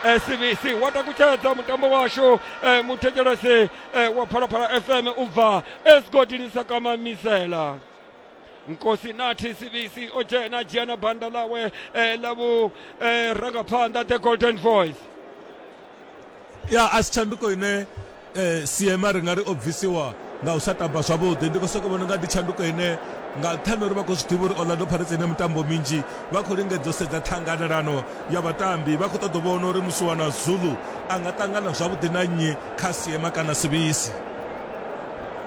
eh, cbc wa takutshedza mutambo washu eh, muthetshelesi eh, wa phalaphala fm u bva esigodini sa kamamisela nkosi nathi cbc o dzhena dzhia na banda ḽawe eh, ḽa vhu eh, rangaphanḓa the golden voice ya a si tshanduko ine Eh, Siema ri nga ri o bvisiwa nga u sa tamba zwavhuḓi. Ndi khou sokou vhona nga ndi tshanduko ine nga nṱhani uri vha khou zwi ḓivha uri Orlando Pirates ine mitambo minzhi vha khou lingedza u sedza ṱhanganelano ya vhatambi vha khou ṱoḓa u vhona uri musiwana Zulu a nga ṱangana zwavhuḓi na nnyi kha Siema kana Sibisi.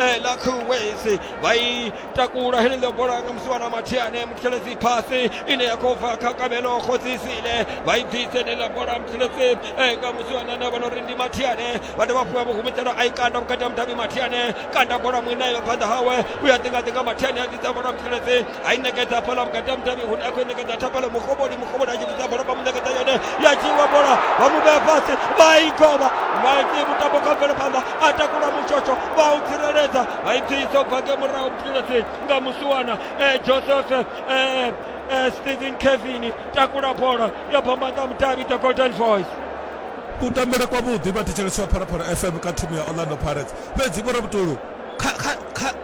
eh, la kuwezi vha i takula heneḽo bola nga musi wana mathiane muthelezi phasi ine ya khou bva kha kabelo khodzisile vha i bvise heneḽa bola muthelezi eh, nga musi wana na vhona uri ndi mathiane vha dovha fhiwa vhuhumitelo a i kanda vhukati ha mudavhi mathiane kanda bola muinayo phanḓa hawe u ya ḓingaḓinga mathiane a ḓisa bola muthelezi ai neketa pala vhukati mudavhi hune a khou neketa tha pala mukovhoni mukovhoni a tshi vhudza bola vha mu neketa yone ya dzhiiwa bola vha mu vhea fhasi vha i govha vha iti mutambo kha mvelaphanḓa a takula mutshotsho vha u tsireledza vha i dzhiisa u bva nge murahu mutshilasi nga musiwana joseph stephen kevin takula bola ya bambanḓa mudavhi the golden voice kutambele kwavhuḓi vha thetshelesi wa phalaphala fm kha thimu ya orlando pirates fhedzi vho rabutulu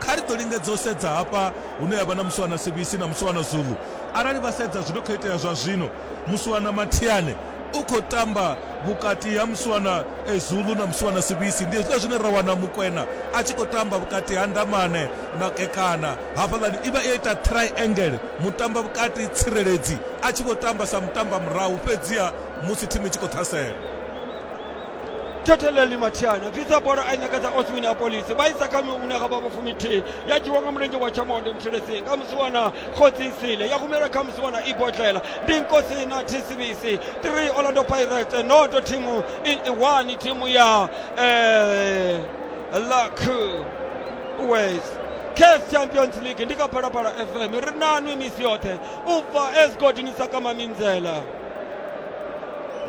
kha ri ḓo lingedza u sedza hafha hune ha vha na Muswana Sibisi na Muswana Zulu. Arali vha sedza zwi no khou itea zwa zwino, Muswana Mathiane u khou tamba vhukati ha Muswana Zulu na Muswana Sibisi. Ndi hezwiḽa zwine ra wana Mukwena a tshi khou tamba vhukati ha Ndamane na Kekana. Hafhaḽani i vha yo ita triangle, mutamba vhukati tsireledzi a tshi vho tamba sa mutamba murahu fhedziha musi thimu i tshi khou ṱhasela. keteleli mathiana bvisa bola a nyaga dza oswin a polisi vha isa kha miune ga vha vhafumithihi ya dzhiwa nga mulenzhe wa tshamonde muthelesini nga musiwana khotsi nsile ya humela kha musiwana ibodlela ndi nkosi na tshisivisi 3 orlando pirates noto thimu iwani thimu ya eh, luck west case champions league ndi ka phalaphala fm ri nanwi misi yoṱhe u bva esigodini sa kama minzela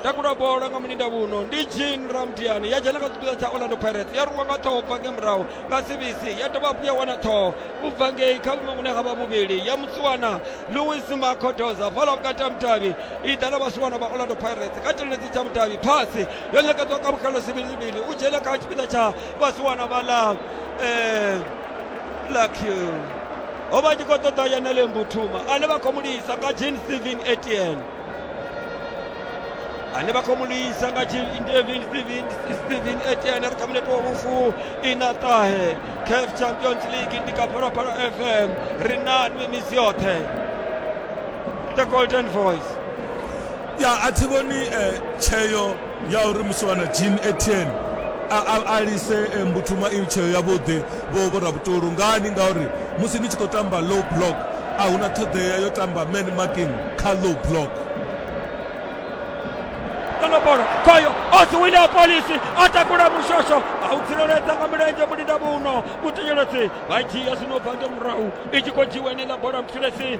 takula bola nga mulinda vhuno ndi jean ramdiani ya dzhena kha tshipiḓa tsha orlando pirates ya rwiwa nga ṱhoho bva nge murahu nga cbc ya dovha hafhu ya wana ṱhoho u bva ngei kha vhuṅwe vhune ha vha vhuvhili ya mutsiwana louis makodoza fhala vhukati ha mudavhi i ḓa na vhasiwana vha orlando pirates kha tshirenedzi tsha mudavhi phasi yo ṋekedzwa ka vhukalo sivhilivhili u dzhena kha tshipiḓa tsha vhasiwana vhaḽa um lucky o vha tshi khou ṱoḓa yenele mbuthuma ane vha khou mu lisa nga jean steven etn ane vha khou mu lisa nga jean steven steven steven etn ri kha muneto wa vhufu ina ṱahe caf champions league ndi kha phalaphala fm ri nanwi misi yoṱhe the golden voice ya a thi vhoni eh, tsheo ya uri musiwana Jean Etienne a, a, a lise eh, mbuthuma i tsheo yavhuḓi vho vho Rabutulu ngani ngauri musi ni tshi khou tamba low block a huna ṱhoḓea yo tamba man marking kha low block ṱanobora khoyo o si wina polisi a takula mushosho a u tsireledza nga mulenzhe mulinda muno mutenyeledzi vha dzhia zwino bva nge murahu i tshi khou dzhiwa ene ḽa bola mutshilesi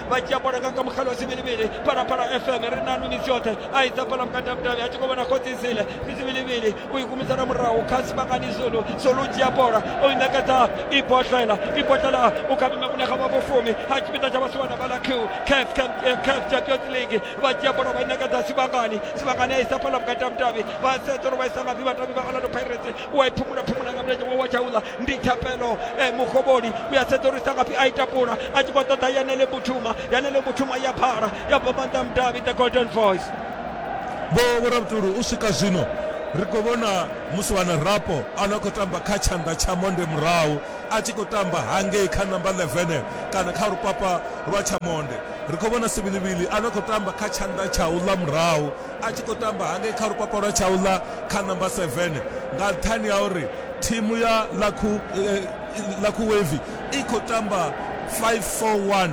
vha dzhia bola nga kha mukhala wa sivhilivhili phalaphala fm ri na minitsi yoṱhe a isa phala mukatavhutavhi a tshi khou vhona khodzisile ndi sivhilivhili u i kumisana murahu kha sivhangani zulu zulu dzhia bola o i ṋekedza i botlela i botlela u kha vhime vhune kha vha vhofumi ha tshipiḓa tsha vhasiwana vha ḽa q caf caf champions league vha dzhia bola vha i ṋekedza sivhangani sivhangani a isa phala mukatavhutavhi vha sedza uri vha isa nga ḓi vhatavhi vha orlando pirates u a i phumula phumula nga mulenzhe wa wa tsha uḽa ndi thapelo eh, mukovholi u ya sedzulusa ngafhi a ita pula a tshi khou ṱoḓa yanele butshuma yanele butshuma ya phala ya bva maanḓa mudavhi the golden voice vho vhoravhutulu u swika zwino ri khou vhona musi wana rapo a no khou tamba kha tshanḓa tsha monde murahu a tshi khou tamba hangei kha namba 11 kana kha lupapa lwa tsha monde ri khou vhona sivilivili a no khou tamba kha tshanḓa tsha u ḽa murahu a tshi khou tamba hangei kha lupapa lwa tshaula kha namba 7 nga nṱhani ha uri thimu ya lakhu wave i khou tamba 541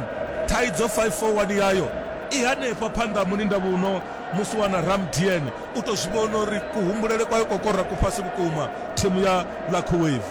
thaidzo 541 yayo i hanefha phanḓa mulinda vhuno musi wana ramdn u tou zwi vhona uri kuhumbulele kwayo kokora ku fhasi vhukuma thimu ya lakhu wave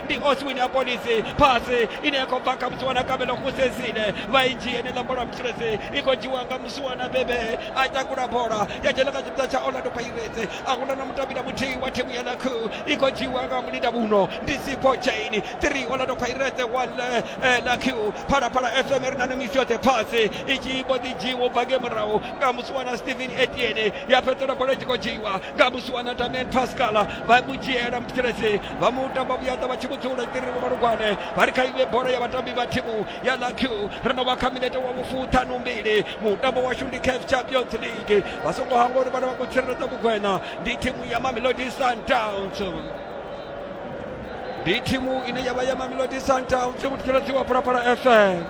ndi oswin ya polisi phasi ine ya khou bva kha musiwana kabelo kusesile vha i dzhie ni ḽa bola mutsiresi i khou dzhiwa nga musiwana bebe a takula bola ya dzhena kha tshipiḓa tsha orlando pirates a huna na mutambi na muthihi wa thimu ya lakhu i khou dzhiwa nga mulinda muno ndi sipo chain 3 orlando pirates wa lakhu phalaphala fm ri na no misi yoṱhe phasi i tshi mbo ḓi dzhiwa u bva nge murahu nga musiwana stephen etiene ya fhedzela bola i tshi khou dzhiwa gabusi wana tame pascala vha mu dzhiela muthetshelesi vha mu tamba vhuyaḓa vha tshi mu dzula ṱiriri malugwane vha ri kha iwe bola ya vhatambi vha thimu ya laq ri no vha kha minete wa vhufuṱhanu mbili mutambo washu ndi caf champions league vha songo hangwa uri vhana vha khou tsireledza vhugwena ndi thimu ya mamelodi sundowns ndi thimu ine ya vha ya mamelodi sundowns muthetshelesi wa phalaphala fm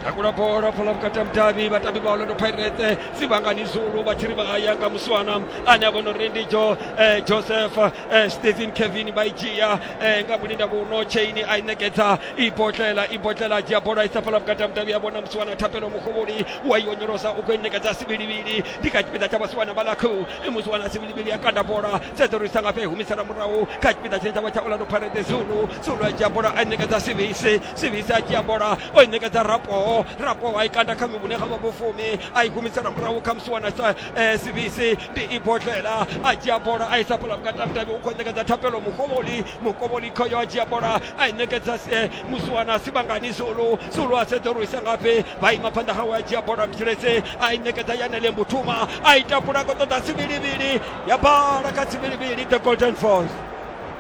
takula bola phola vhukati ha mudavhi vhatambi vha orlando pirate sivhangani zulu vha tshi ri vha ya nga muswana ane a vhona uri ndi jo eh, joseph eh, stephen kevin vha i dzhia eh, nga mulinda vhuno chaini a i ṋekedza i botlela i botlela a dzhia bola a isa phola vhukati ha mudavhi a vhona muswana thapelo muhuvhuli wa i onyolosa u khou i ṋekedza sivhilivhili ndi kha tshipiḓa tsha vhasiwana vha lakhu muswana sivhilivhili a kanda bola sedza uri i sanga fhe humisela murahu kha tshipiḓa tshine tsha vha tsha orlando pirate zulu tsolo a dzhia bola a ṋekedza sivisi sivisi a dzhia bola o i ṋekedza rapoho rapoho a i kanda kha mivhune kha vha vhofumi a i humisela murahu kha musi wana eh, sivisi ndi i bodlela a dzhia bola a isa bola vhukatavhutavhi u khou ṋekedza thapelo mukovholi mukovholi khoyo a dzhia bola a i ṋekedza eh, musi wana sivhangani zulu zulu a sedza uri isa ngafhi vha ima phanḓa hawe a dzhia bola mtshelese a i ṋekedza yanele mbutuma a i tapula ko ṱoḓa sivilivili ya bala kha sivilivili the golden force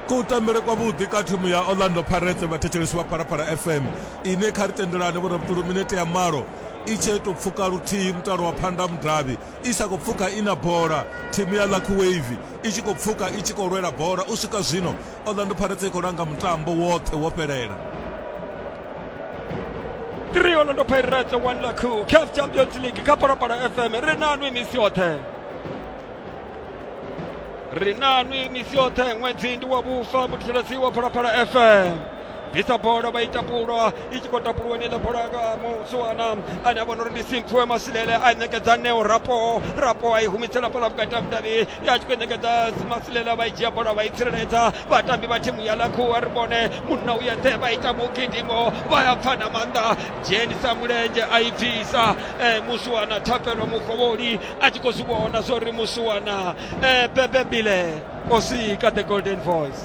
Kutambele kwavhuḓi ka thimu ya Orlando Pirates vhathetshelesi vha Phalaphala FM ine kha ri tendelane vho rabutulu minete ya malo i tshee tou pfuka luthihi mutalo wa Phanḓa Mudavhi i sa khou pfuka i na bola, thimu ya Lucky Wave i tshi khou pfuka i tshi khou lwela bola. U swika zwino Orlando Pirates i khou langa mutambo woṱhe wo fhelela. 3 Orlando Pirates 1 Lucky CAF Champions League kha Phalaphala FM ri na nwi misi yoṱhe. ri nanwi misi yoṱhe ṅwedzi ndi wa vhufa muthiseledzi wa phalaphala fm bvisa bola vha ita pulwa i tshi khou tapulwa ni ḽa bola ka musuwana ane a vhona uri ndi simphiwe masilele a ṋekedza neo rapo rapo a i humisela bola vhukati ha vhudavhi ya tshi khou ṋekedza masilele vha i dzhia bola vha i tsireledza vhatambi vha thimu ya lakhuwa ri vhone munna u yeṱhe vha ita mugidimo vha ya pfa na maanḓa dzhenisa mulenzhe a i bvisa musuwana thapelo mukovholi a tshi khou zwi vhona zwa uri musiwana eh, bebe bile o sika the golden voice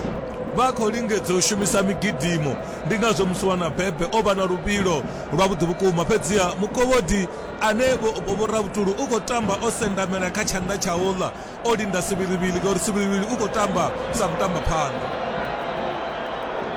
vha khou lingedza u shumisa migidimo ndi ngazwo musiwana bebe o vha na luvhilo lwavhuḓi vhukuma fhedziha mukovhodi ane vhoravhutulu u khou tamba o sendamela kha tshanḓa tsha uḽa o linda sivhilivhili ngauri sivhilivhili u khou tamba sa mutamba phanḓa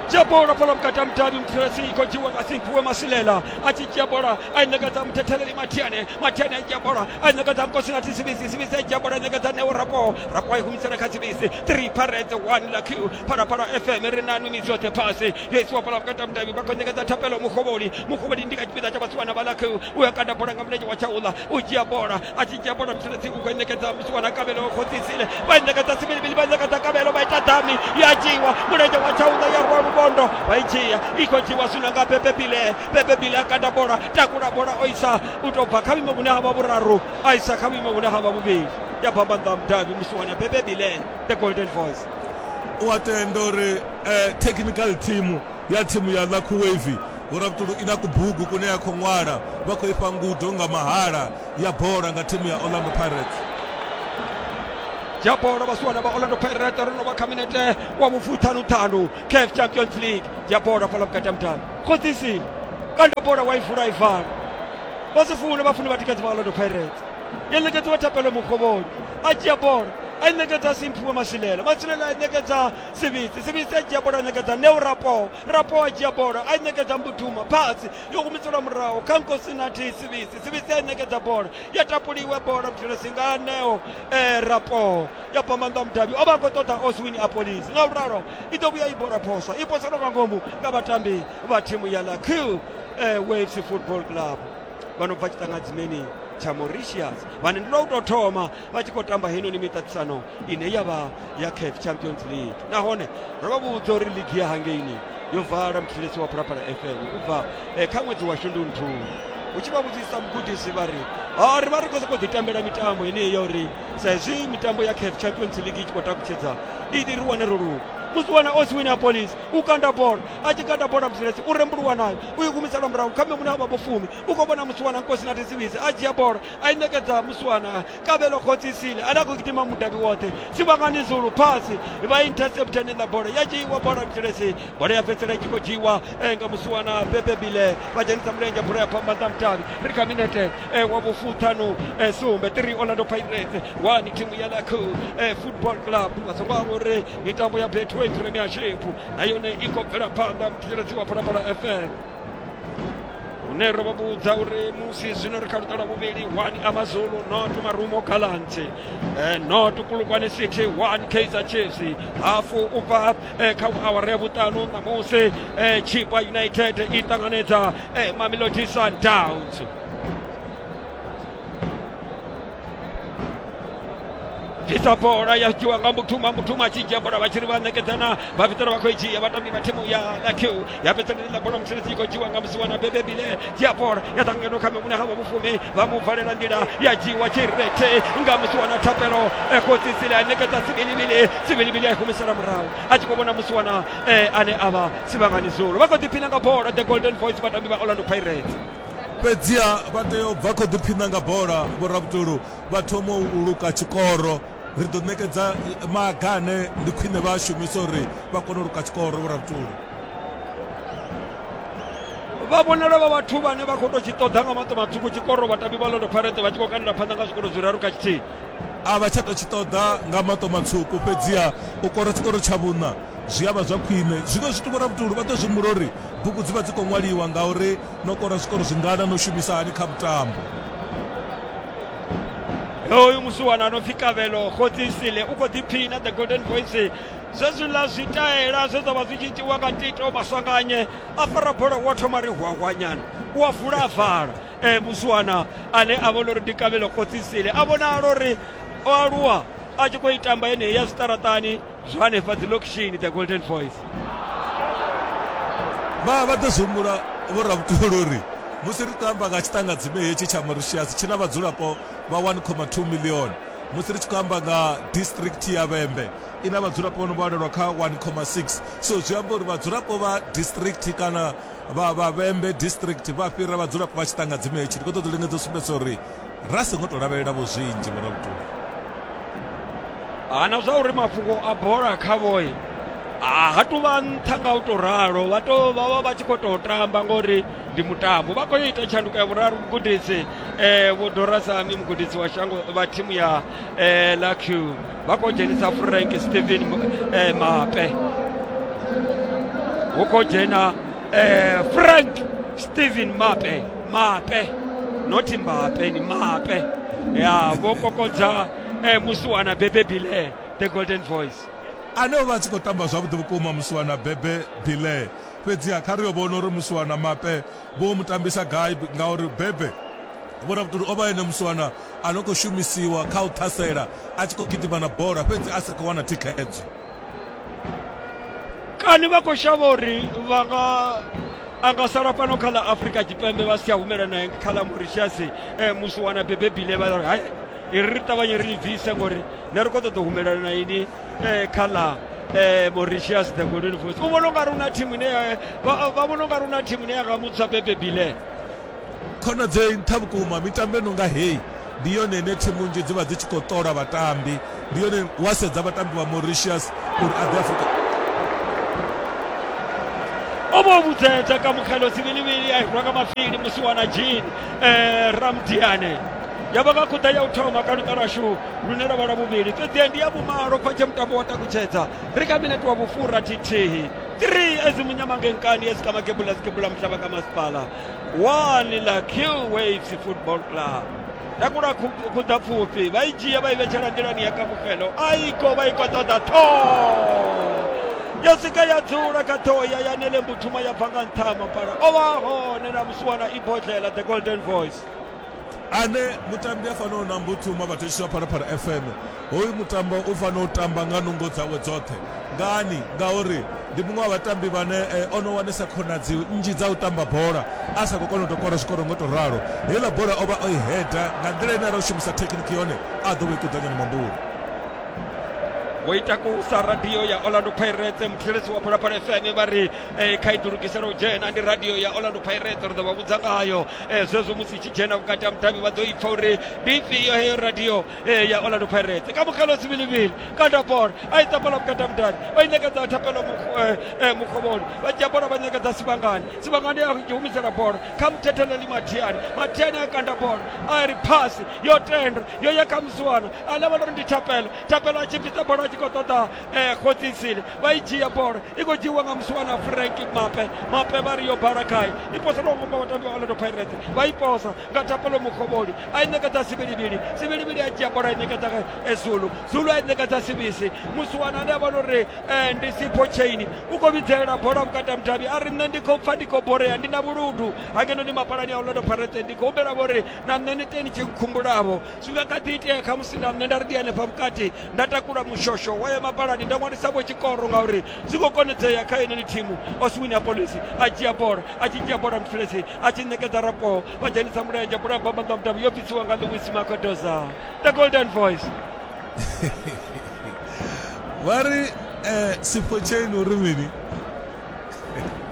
dzhia bola fhala vhukati ha mudavhi mphiresi i khou dzhiwa nga simpuwe masilela a tshi dzhia bola ainekadza muthetheleli matiane matiane aidzhia bola ainekadza mkosi na tisibisi sibisi aidzhia bola ainekadza neo rapo rapo aihumisela kha sibisi three parets one la q phalaphala fm ri na numi zwoṱhe phasi yo isiwa bola vhukati ha mudavhi vha khou nekadza thapelo muhovholi muhovholi ndi kha tshipiḓa tsha vhasiwana vha la q u ya kanda bola nga mulenzhe wa tshaula u dzhia bola a tshi dzhia bola muthelesi u khou nekadza musiwana kabelo khodzisile vha nekadza sibilibili vha nekadza kabelo vha ita dami ya dzhiwa mulenzhe wa tshaula ya rwa lubondo vha i dzhia i khou dzhiwa zwino nga pepe pile Bebe Bile a kanda bola takula bola o isa u tou bva kha vhuimo vhune ha vha vhuraru a isa kha vhuimo vhune ha vha vhuvhili ya bva maanḓa a mudavhi musi wana Bebe Bile the golden voice u a tenda uri eh, technical team ya thimu ya Lucky Wave Vhurabutulu i na kubugu kune ya khou ṅwala vha khou ifha ngudo nga mahala ya bola nga thimu ya Orlando Pirates. ya bola vha siwana vha orlando pirate ro no vha kha minete wa vhufuthanuṱhanu caf champions league ya bola fhala vhukati ha mudavhi khoḓisi kanda bola wa i vula i vala vha si fune vha fune vha tikedzi vha orlando pirates yo ṋekedziwa thapelo mukhovhoni a dzhia bola a i ṋekedza simphiwe masilela masilela a i ṋekedza sivhisi sivhisi a dzhia bola a ṋekedza neo rapo rapo a dzhia bola a i ṋekedza mbuduma phasi yo humiselwa muraho kha nkosi na thi sivhisi sivhisi a i ṋekedza bola ya tapuliwe bola muthelesi nga neo eh, rapo ya bva maanḓa mudavhi o vha a khou ṱoḓa oswin apolis nga uralo i ḓo vhuya i bora phoso i poselwa nga ngomu nga vhatambi vha thimu ya la q eh, waves football club vha no bva tshiṱangadzimeni tsha mauritius vhane ndi lwa u tou thoma vha tshi khou tamba heinoni miṱaṱisano ine ya vha ya caf champions league nahone ro vha vhudza uri ligi ya hangeini yo vala muthetshelesi wa phalaphala fm u bva eh, kha ṅwedzi wa shundunthuni u tshi vha vhudzisa mugudisi vha ri "Ah, ri vha ri khou sokou ḓi tambela mitambo yeneyi ya uri sa hezwi mitambo ya caf champions league i tshi khou takutshedza iḓi ri wane ro luga musiwana o si wina polisi u kanda bola a tshi kanda bola mzilesi u rembuluwa nayo u i humisela murahu kha mune a vha vho fumi u khou vhona musiwana nkosi na tisiwisi a dzhia bola a i ṋekedza musiwana kavhelo khotsisile ane a khou gidima mudavhi woṱhe sivhangani zulu phasi vha intercepta nenḓa bola ya dzhiiwa bola mzilesi bola ya fhedzisela i tshi khou dzhiiwa eh, nga musiwana bebe bile vha dzhenisa mulenzhe bola ya khou amba nṱha mutavhi ri kha minete eh, wa vhufuṱhanu eh, sumbe 3 orlando pirates wani thimu ya laco eh, football club vha songo amba uri mitambo ya betway premiership na yone i khou bvela phanḓa muthetsheledzi wa phalaphala fm hune ro vha vhudza uri musi zwino ri kha luṱa lwa vhuvhili one amazulu not marumo galants eh, not kulukwane city one kaizer chiefs hafu u bva eh, kha awara ya vhuṱanu ṋamusi eh, chipa united i ṱanganedza eh, mamelodi sundowns bvisa bola ya dzhiwa nga muthuma muthuma a tshi dzhia bola vha tshi ri vha ṋekedzana vha vha khou i dzhia vhatambi vha thimu ya q yapetsanelila bola mutsiritsi i khou dzhiwa nga musi wana bebe bile diapol ya ḓa ngeno kha mimune ha vhafumi vha mu valela nḓila ya dzhiwa tshirethe nga musi wana thapelo e khotsitsile a nekedza sibilibili sibilibili a i humisela murahu a tshi khou vhona musi wana ane a vha sivhangani zulu vha khou ḓiphina nga bola the golden voice vhatambi vha orlando pirates fhedziha vha tea u bva khou ḓiphina nga bola vhorabutulu vha thoma u luka tshikoro Ri ḓo ṋekedza maga ane ndi khwine vha a shumisa uri vha kone u luka tshikoro vho rabutulu vha vhonala vha vhathu vhane vha khou tou tshi ṱoḓa nga maṱo maṱuku tshikoro vhatambi vha londo pharete vha tshi khou kandela phanḓa nga zwikoro zwiraru kha tshithihi a vha tsha tou tshi ṱoḓa nga maṱo matswuku fhedziha u kora tshikoro tsha vhuṋa zwi a vha zwa khwine zwiṅwe zwithu vho rabutulu vha ḓo zwi humbula uri bugu dzi vha dzi khou ṅwaliwa ngauri no kora zwikoro zwingana no shumisa hani kha mutambo hoyu musiwana no pfi kavhelo khotsi sile u khou ḓiphina the golden voice zwezwiḽa zwitaela zwe zwa vha zwi tshi itiwa nga tito masanganye a fara bola wa thoma ri hwahwanyana u a vula a vala um eh, musiwana ane a vhona uri ndi kavhelo khotsi sile a vhonala uri o aluwa a tshi khou i tamba yeneyi ya zwiṱaraṱani zwa hanefha dzi lokishini dza golden voice vha vha ḓo zwi humbula vho rabutolo uri musi ri tou amba nga tshiṱangadzime hetshi tsha mauritius tshi na vhadzulapo vha 1,2 million musi ri tshi khou amba nga district ya vhembe i na vhadzulapo vho no vhalelwa kha 1,6 so zwi amba uri vhadzulapo vha district kana vha vha vhembe district vha fhira vhadzulapo vha tshiṱangadzime hetshi ndi khou ṱoḓa u lingedza u sumbedza uri ra songo tou lavhelela vho zwinzhi vho rabutuli hana zwa uri mafhungo a bola kha vhoyi ha tu vha nṱha nga u tou ralo vha to vha vha vha tshi khou tou tamba ngori ndi mutambo vha khou ita tshanduko ya vhuraru mugudisi eh, vho dorasami mugudisi wa shango vha thimu ya eh, lac vha khou dzhenisa frank stephen eh, mape hu khou dzhena frank stephen mape mape not mbape ni mape ya vho kokodza eh, musiwana bebe bile the golden voice ane o vha a tshi khou tamba zwavhuḓi vhukuma musiwana bebe bile fhedziha kha ri yo vhona uri musiwana mape vho mu tambisa gai ngauri bebe vhona vhutuli o vha ene musiwana a no khou shumisiwa kha u ṱhasela a tshi khou gidima na bola fhedzi a sa khou wana thikhedzo kani vha khou shavha uri vha nga a nga sala fhano kha ḽa afrika tshipembe vha si tsha humela nae kha ḽa mauritius um eh, musi wana bebebile vha ri hai iri ri ṱavhanye ri bvise ngori ne ri khou ṱoḓa u humelela na ini um eh, kha ḽa eh, mauritius the golden voice u vhona u nga ri una thimu ine vha vhona u nga ri una thimu ine ya nga mutswa bebebile Khonadzei nṱha vhukuma. Mitambo i no nga heyi ndi yone ine thimu nnzhi dzi vha dzi tshi khou ṱola vhatambi, ndi yone wa sedza vhatambi vha Mauritius uri a ḓe Afrika. o vho vhudzedza ka mukgelo sivhilivhili a hirwa nga mafhili musi wana jean eh, ramdiane ya vha nga khuḓa ya u thoma kha luṱa lwashu lune lwa vha lwa vhuvhili fhedzi ndi ya vhumalo khotshe mutambo wa takutshedza ri kha minete wa vhufura thithihi 3 ezimunyamangenkani ezikamakebula zikebula muhlaba ka masipala 1 ḽa kill waves football club takula khuḓa pfufhi vha i dzhia vha i vhetshela nḓilani ya kamufhelo a i ko vha i ko ṱoḓa ṱhoho ya swika ya dzula kha ṱhoho ya ya nele mbuthuma ya bva nga nṱha ha mapala o vha hone na musiwana ibodlela the golden voice ane mutambi a fanaho na Mbuthuma vhathetshiswa Phalaphala FM hoyu mutambo u fanela u tamba nga nungo dzawe dzoṱhe ngani ngauri ndi muṅwe wa vhatambi vhane eh, ono wanesa khonadzi nnzhi dza u tamba bola a sa khou kona u tou kora zwikoro ngo tou ralo heiḽa bola o vha o i heda nga nḓila ine ara u shumisa thekhiniki yone a ḓo vha i kuḓanyana mambula vho ita kusa radio ya orlando pirates muthetshelesi wa phalaphala fm vha ri eh, khaedu lugisela u dzhena ndi radio ya orlando pirates ri ḓo vha vhudza ngayo eh, zwezwo musi tshi dzhena vhukati ha mudavhi vha ḓo ipfa uri ndi ifhio heyo radio eh, ya orlando pirates ka mukalo zibilibili kanda bola a i tapela vhukati ha mudavhi vha i ṋekedza thapelo eh, eh, mukhovhoni vha dzhia bola vha ṋekedza sivhangani sivhangani a humisela bola kha muthetheleli mathiani mathiani a kanda bola a ri phasi yo tenda yo ya kha musiwana a lavhelela uri ndi thapelo thapelo a tshimbidza bola a tshi khou ṱoḓa eh, khotisile vha i dzhia bola i khou dzhiiwa nga musiwana frank mape mape vha ri yo bala gai i posa lwa ngomba vhatambi vha orlando pirates vha i posa nga tapelo mukhovholi a i ṋekedza sivhilivhili sivhilivhili a dzhia bola i ṋekedza eh, zulu zulu a i ṋekedza sivisi musiwana ane a vha uri eh, ndi sipho chaini u khou vhidzelela bola vhukati ha mudavhi a ri nṋe ndi khou pfa ndi khou borea ndi na vhuludu hangeno ndi mapalani a orlando pirates ndi khou humbela vhori na nṋe ni teni tshi nkhumbulavo zwi nga kha ḓi itea khamusi na nṋe nda ri ndi hanefha vhukati nda takula mushosho wa ya mapalani nda ṅwalisavho tshikoro ngauri zwi khou konedzea kha yeneni thimu oswini ya polisi a dzhia bola a tshi dzhia bola mfilesi a tshi ṋekedza rapo vha dzhenisa mulenzhe bola bamba nga mudavhi yo bvisiwa nga louis makodoza the golden voice vha ri um sipho chain uri mini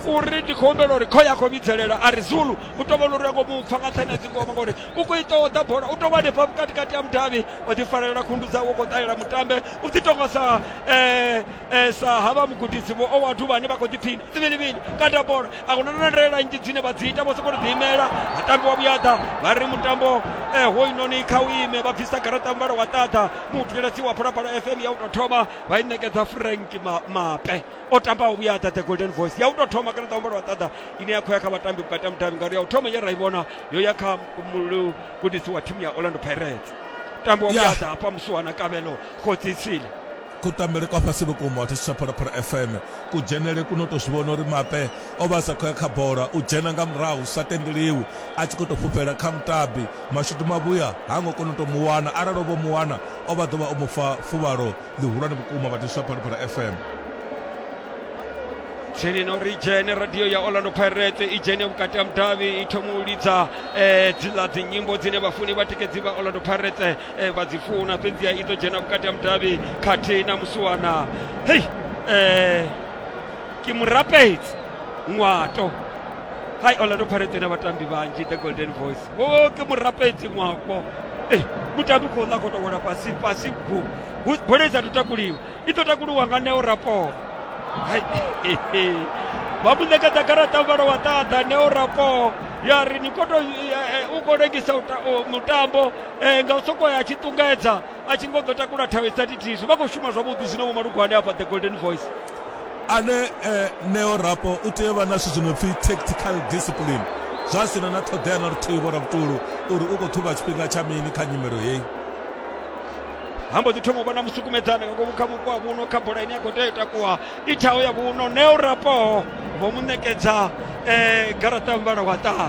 uri ndi khou humbela uri kho ya khou vhidzelela a ri zulu u tovhona uri a ngo mu pfa nga nṱhani a dzingoma ngauri u khou ita o ḓa bola u tou vha hanefha vhukati kati ya mudavhi o ḓi farelela khundu dzawe u khou ṱalela mutambe u dzi tonga sa eh, eh, sa havha mugudisi vho o wathu vhane vha khou ḓi phina tsivilivili kanda bola a huna na ndalela nnzhi dzine vha dzi ita vho sokou ḓi imela mutambi wa vhuyaḓa vha ri mutambo eh, hoyunoni kha u ime vha bvisa garaṱa muvhala wa ṱaḓa muutulelasi wa phalaphala fm ya u tou thoma vha i ṋekedza frank Ma- mape o tambaho vhuyaḓa the golden voice ya u tou thoma garaṱa muvhala wa ṱaḓa ine ya khou ya kha vhatambi vhukati ha mudavhi ngauri ya u thoma ye ra i vhona yo ya kha mugudisi wa thimu ya orlando pirates tambo wa vhuyaḓa hafha musuwa na kavhelo khotsitsile kutambele kwa fhasi vhukuma wa thetsha phalaphala fm kudzhenele kuno to zwi vhona uri mape o vha sa khou ya kha bola u dzhena nga murahu sa tendeliwi a tshi khou tou fhufhela kha mutabi mashudu mavhuya ha ngo kona u tou mu wana arali o vho mu wana o vha ḓo vha o mu fa fuvhalo ḽihulwane vhukuma vha tiswa phalaphala fm tsini no ri dzhene radio ya orlando pirate i dzhene vhukati ha mudavhi i thoma u lidza um dziḽa dzinyimbo dzine vhafuni vhatikedzi vha orlando pirate um vha dzi funa fhedziha i ḓo dzhena vhukati ha mudavhi khathihi na musiwana hei um ke murapedzi ṅwato hai orlando pirate na vhatambi vhanzhi the golden voice wo ke murapedzi mwako Ei, mutambi khou ḽa khou tou wela fhasi fhasi bu Bu- bola i sathu takuliwa i ḓo takuliwa nga neo rapo Hai, he, he. vha mu ṋekedza garaṱa muvhala wa ṱaḓa neo rapo ya ri ni koto u khou lengisa u ta- u- mutambo eh, nga u sokou ya tshi ṱungedza a tshi ngo ḓo takula thawe sa thithihi vha khou shuma zwavhuḓi zwino vho malugwani afha the golden voice ane eh, neo rapo u tea u vha na zwithu zwi no pfi tactical discipline zwa sina na ṱhoḓea na luthihi vhora vhutulu uri u khou ṱhuvha tshifhinga tsha mini kha nyimelo heyi ha mbo ḓi thoma u vha na musukumedzana nga ngomu kha vhupo ha vhuno kha bola ine ya khou tea u takuwa i thaho ya vhuno neo rapo vho mu ṋekedza um garaṱa muvhala wa ṱaḓa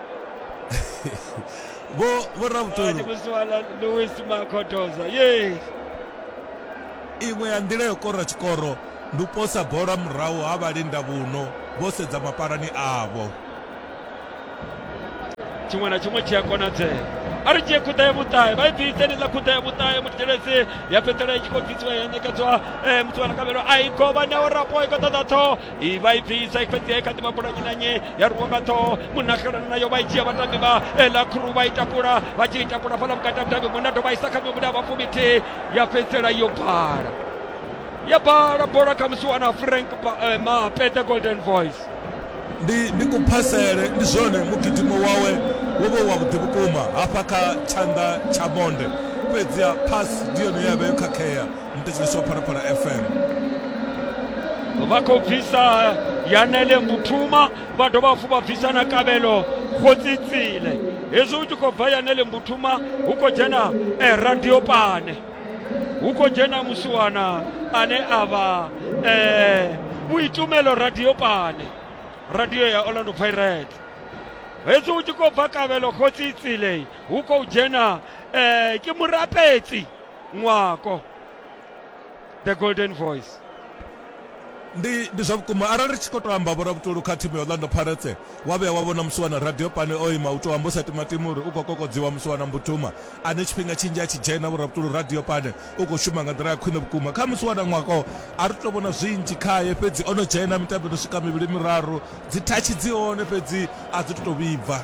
vho vho Award ravhutulu musiwana Louis Makhotoza. Yes. iṅwe ya nḓila yo kora tshikoro ndi u posa bola murahu ha vhalinda vhuno vho sedza mapalani avho tshiṅwe na tshiṅwe tshi a konadzea a ri dzhie khuḓa ya vhuṱahe vha i bvise ndi ḽa khuḓa ya vhuṱahe muthelesi ya fhedzisela i tshi khou bvisiwa ya ṋekedzwa eh, muthu wa nakavhelo a i govha neo rapo i khou ṱoḓa ṱhoho ivaipfisa fhedzi i kha ḓi vha bola nnyi na nnyi ya rwiwa nga ṱhoho munagelana nayo vha i dzhia vhatambi vha ela khuru vha i takula vha tshi i takula fhala vhukati ha mutambi muṅwe na dovha isa kha miṅwe muda vhafumi thihi ya fhedzisela yo bala ya bala bola kha musi wana frank mape the golden voice ndi ndi kuphasele ndi zwone mugidimo wawe wo vha wa vhuḓi vhukuma hafha kha tshanḓa tsha monde fhedziha phasi ndi yone ye ya vha yo khakhea mutedziswa phalaphala fm vha khou bvisa yanele mbuthuma vha dovha hafhu vha bvisa na kavhelo khotsitsile hezwi hu tshi khou bva yanele mbuthuma hu khou dzhena eh, radio pane hu khou dzhena musiwana ane a vha eh, vhuitumelo radio pane radio ya orlando pirates hezwi hu tshi khou bva kavhelo khotsitsile hu khou dzhena eh, ke murapetsi ṅwako the golden voice ndi ndi zwa vhukuma arali ri tshi khou tou amba vhora vhutulu kha thimu ya orlando pirates wa vhuya wa vhona musi wana radio pani o ima u tou amba u sa timatima uri u khou kokodziwa musi wana mbutuma ane tshifhinga tshinzhi a tshi dzhena vhora vhutulu radio pani u khou shuma nga nḓila ya khwine vhukuma kha musi wana ṅwako a ri tou vhona zwinzhi khaye fhedzi o no dzhena mitambo no swika mivhili miraru dzi thatshi dzi hone fhedzi a dzi tou vhibva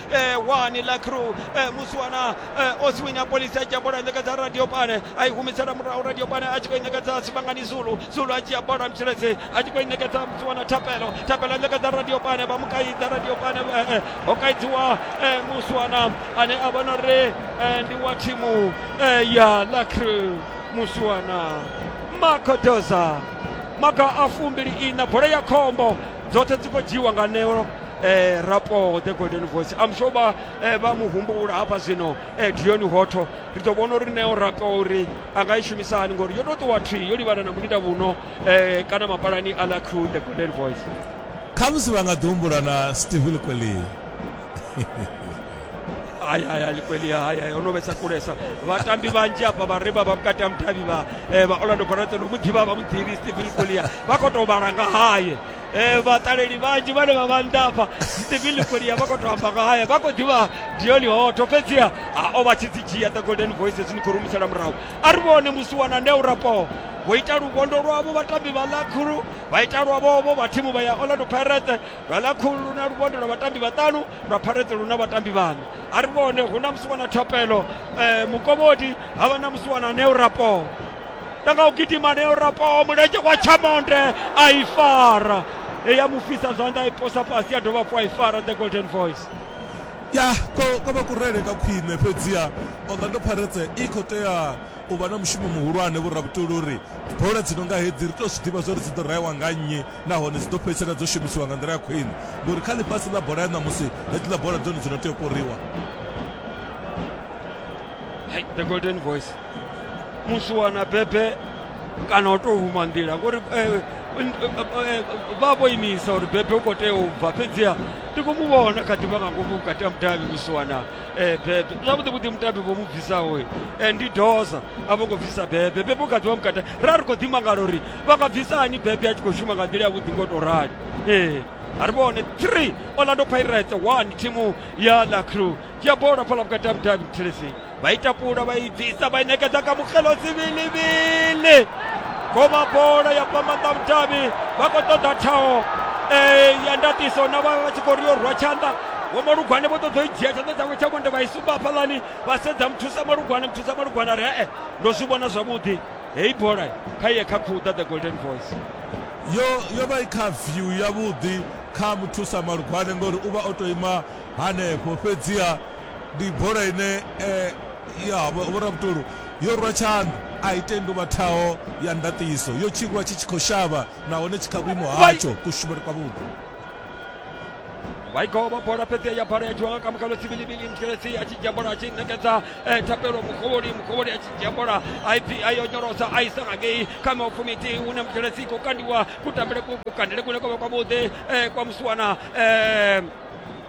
eh, wani la crew eh, musiwana eh, osiwini ya polisi a dzhia bola a ṋekedza radio pane a i humisela murahu radio pane a tshi khou i ṋekedza sivhangani zulu zulu a dzhia bola mtshiledzi a tshi khou i ṋekedza musiwana thapelo thapelo a ṋekedza radio pane vha mu kaidza radio pane eh, eh, ho kaidziwa eh, musiwana ane a vhona uri eh, ndi wa thimu eh, ya la crew musiwana makodoza maga a fumbili ina bola ya khombo dzoṱhe dzi khou dzhiiwa nga neo eh, rapo the golden voice am sure ba eh, ba mu humbula hafha zwino eh, dioni hotho ri ḓo vhona uri neo rapo uri a nga i shumisa hani ngori yo tou ṱuwa thwi yo livhana na mulinda vhuno eh, kana mapalani a la crew the golden voice khamusi vha nga ḓi humbula na steve likwelii hayi hayi hayi kweli hayi hayi ono vhesa kulesa vhatambi vhanzhi hafha vha re vha vha vhukati ha mudavhi vha eh, vha orlando barate no mu ḓivha vha mu ḓivhi stephen kolia vha khou tou vhala nga haye Eh, vhaṱaleli vhanzhi vhane vha vha nḓafha stephen likolia vha khou tou amba nga haya vha khou ḓivha dioni hoto fhedziha a o vha tshi dzi dzhia the golden voices ni khou rumisela murahu a ri vhone musi wana ndea urapoho vho ita luvhondo lwavho vhatambi vha lakhulu vha ita lwavhovho vha thimu vha ya orlando pirate lwa lakhulu lu na luvhondo lwa vhatambi vhaṱanu lwa pirate lu na vhatambi vhaṋa a ri vhone hu na musi wana thapelo um mukovhodi ha vha na musi wana nea urapoho ta nga u gidima ne urapaho mulenzhe wa chamonde a i fara eya mu fhisa zwanḓa i posa fhasi ya dovha hafhu a i fara the golden voice ya ko vha kurele ka khwine fhedziha orlando pirates i khou tea u vha na mushumo muhulwane vhorabutuli uri bola dzi no nga hedzi ri tou zwi ḓivha zwa uri dzi ḓo raewa nga nnyi nahone dzi ḓo fhedzisela dzo shumisiwa nga nḓila ya khwine ngori kha ḽifhasi ḽa bola ya ṋamusi hedziḽa bola dzone dzi no tea u koriwa the golden voice musi wana bebe kana o tou huma nḓila ngori eh, n- eh, eh, vha vho imisa uri bebe u khou tea u bva fhedziha ndi khou mu vhona kha ḓivha nga ngomu vhukati ha mudavhi musi wana eh, bebe zwavhuḓi vhuḓi mudavhi vho mu bvisaho eh, ndi doza a vho ngo bvisa bebe bebe u kha ḓivha mukati ra ri khou ḓimangala uri vha nga bvisa hani bebe a tshi khou shuma nga nḓila yavhuḓi ngo tou rali ee a ri vhone 3 orlando pirates 1 thimu ya la crew dzhia bola fhala vhukati ha mudavhi muthelesi vha i takula vha i bvisa vha i ṋekedza kha mukgelo sivhilivhili goma bola ya bva maanḓa vhudavhi vha khou ṱoḓa thaho ya ndatiso na vha vha tshi khou ri yo rwa tshanḓa vho malugwane vho ṱoḓa u dzhia tshanḓa tshawe tsha vhonde vha i sumba hafhaḽani vha sedza muthusa malugwane muthusa malugwane ri ee ndo zwi vhona zwavhuḓi heyi bola kha iye kha khuda the golden voice yo yo vha i kha view yavhuḓi kha muthusa malugwane ngori u vha o to ima hanefho fhedziha ndi bola ine eh, ya vhoravhutolu yo rwa tshanḓa a i tendi u vha thaho ya ndaṱiso yo tshirwa tshi tshi khou shavha nahone tshi kha vhuimo hatsho kushumele kwavhuḓi waigova bola fhedzi ya bola ya dzhiwa nga kamukalo sibilibili mtshelesi a tshi dzhia bola a tshi ṋekedza eh, thapelo mukovholi mukovholi a tshi dzhia bola a ipfi a yo nyorosa a isa ngangei kha maufumiti hune mtshelesi i khou kandiwa kutambele ku- kukandele kune kwa vha kwavhuḓi eh, kwa musiwana eh,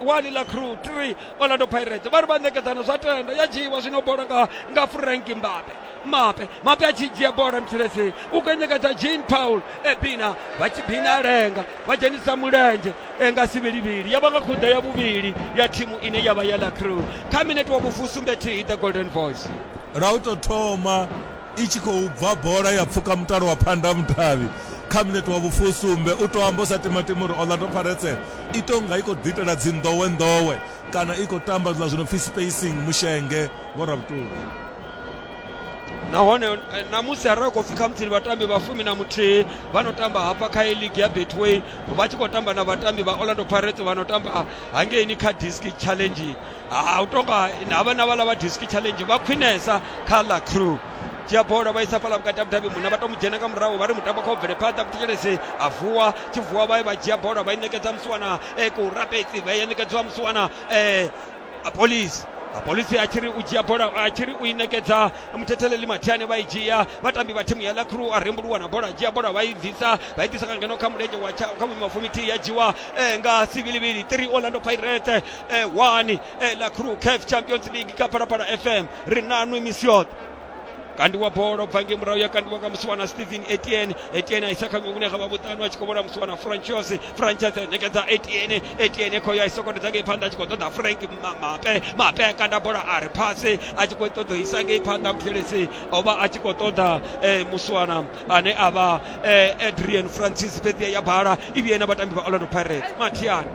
wani ḽa crew 3 orlando pirates vha ri vha ṋekedzana zwa tenda ya dzhiiwa zwino bola nga nga frank mbape mape mape a tshi dzhia bola mthilesini u khou ṋekedza jean paul ebina vha tshi bina lenga vha dzhenisa mulenzhe nga sivhilivhili ya vha nga khuḓa ya vhuvhili ya thimu ine ya vha ya ḽa crew kha minete wa vhufusumbe thihi the golden voice lwa u tou thoma I tshi khou bva bola ya pfuka mutalo wa phandamutavhi kha minete wa vhufusumbe. U tou amba u sa timatima uri Orlando Pirates i tou nga i khou ḓiitela dzinḓowenḓowe kana i khou tamba zwiḽa zwi no pfi spacing mushenge, vho Ravhutungu. nahone eh, ṋamusi arali khou pfi khamusi ndi vhatambi vha fumi na muthihi vha no tamba hafha kha ligi ya betway vha tshi khou tamba na vhatambi vha orlando pirates vha no tamba hangeini kha disk challenge ha u tonga havha na vhala vha district challenge vha khwinesa kha la crew dzhia bola vha isa fhala vhukati ha mudavhi muṋa vha to mu dzhena nga murahu vha ri mutambo kha u bvele phanḓa muthetshelesi a vuwa tshi vuwa vha vha dzhia bola vha i ṋekedza musiwana e ku rapetsi vha ya ṋekedziwa musiwana um apolisi apolisi a tshi ri u dzhia bola a tshi ri u i ṋekedza muthetheleli mathiane vha i dzhia vhatambi vha thimu ya la crew a rembuluwa na bola a dzhia bola vha i bvisa vha i ḓisa nga ngeno kha mulenzhe wa kha vhuima fumithihi ya dzhiwa um nga sivilivili three orlando pirate eh, one eh, la crew caf champions league ka parapara fm ri nanu imisi yoṱhe kandiwa bola ubva nge murahu yakandiwa nga musiwana stephen etiene etiene aisa kha ngwe kunekha vhavhuṱanu a tshi khou vhona musiwana franchos franchos nekedza etiene etiene khoyo aisokotedza ngei phanḓa a tshi khou ṱoḓa frank Ma- mape mape a kanda bola a ri phase a tshi khou ṱoḓa u isa ngei phanḓa muthelesi o vha a tshi khou ṱoḓa eh, musiwana ane a vha eh, adrian francis fhedzi ya bala i vhuye na vhatambi vha orlando pirates mathiani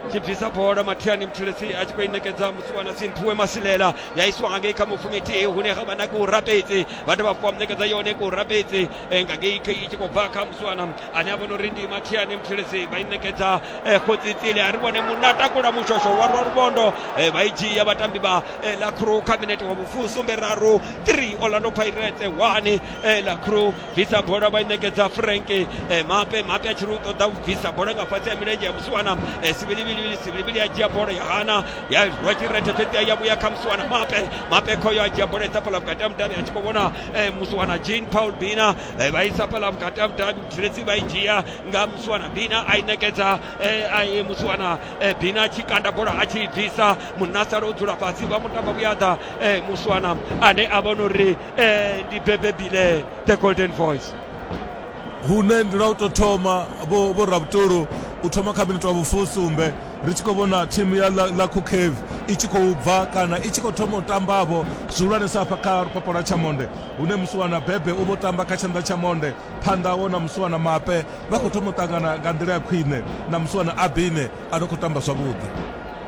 tibvisa bola matiani muthelesi a tshi khou i ṋekedza musiwana simphiwe masilela ya isiwa nga ngei kha mufumiti hune ha vha na ku rapedzi vha dovha fuwa muṋekedza yone ku rapedzi eh, nga ngei khe i tshi khou bva kha musiwana ane a vhona uri ndi matiani muthelesi vha i ṋekedza eh, khotsitsile a ri vhone munna takula mushosho wa rwa lubondo eh, vha i dzhia vhatambi vha eh, la crew kha minete wa vhufusumbe raru 3 orlando pirates 1 eh, la crew bvisa bola vha i ṋekedza frank eh, mape mape a tshi ri u ṱoḓa u bvisa bola nga fhasi ya milenzhe ya musiwana eh, sivhilivhilivhili sivhilivhili ya dzhia bola ya hana ya rwa tshirethe fhedzi ya vhuya kha musiwana mape mape khoyo a dzhia bola isa fhaḽa vhukati ha mudavhi a tshi khou vhona eh, musiwana jean paul bina vha isa fhaḽa vhukati ha mudavhi mutsiretsi vha i dzhia nga musiwana bina a i ṋekedza musiwana bina a tshi kanda bola a tshi i bvisa munna sala o dzula fhasi vha mutamba vhuyaḓa musiwana ane a vhona uri eh, ndi bebebi le the golden voice hune ndi lwa u tou thoma vho vho rabutulu u thoma kha minitwa vhufusumbe ri tshi khou vhona thimu ya la, la cookave i tshi khou bva kana i tshi khou thoma u tambavho zwihulwanesa hafha kha lupapo lwa tshamonde hune musiwana bebe u vho tamba kha tshanḓa tsha monde phanḓa wo na musiwana mape vha khou thoma u ṱangana nga nḓila ya khwine na musiwana abine a no khou tamba zwavhuḓi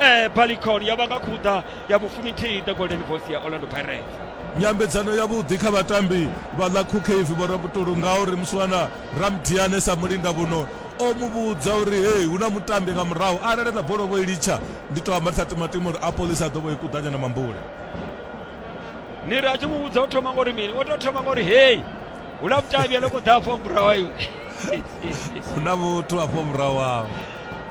eh, balikon yo vha nga khuḓa ya vhufuminthihi the golden voice ya orlando pirates nyambedzano yavhuḓi kha vhatambi vha ḽa khukhevi vho rabutulu ngauri muswana ramdiane sa mulinga vhuno o mu vhudza uri hei hu na mutambi nga murahu arali na bolovho i litsha ndi to amba ṱhaṱimatima uri apolisi a ḓo vho i kuḓanya na mambule ni ri a tshi mu vhudza o thoma ngori mini o tou thoma ngori hei hu na mutambi ane kho ḓa afho murahu iwe hu na muthu afho murahu awo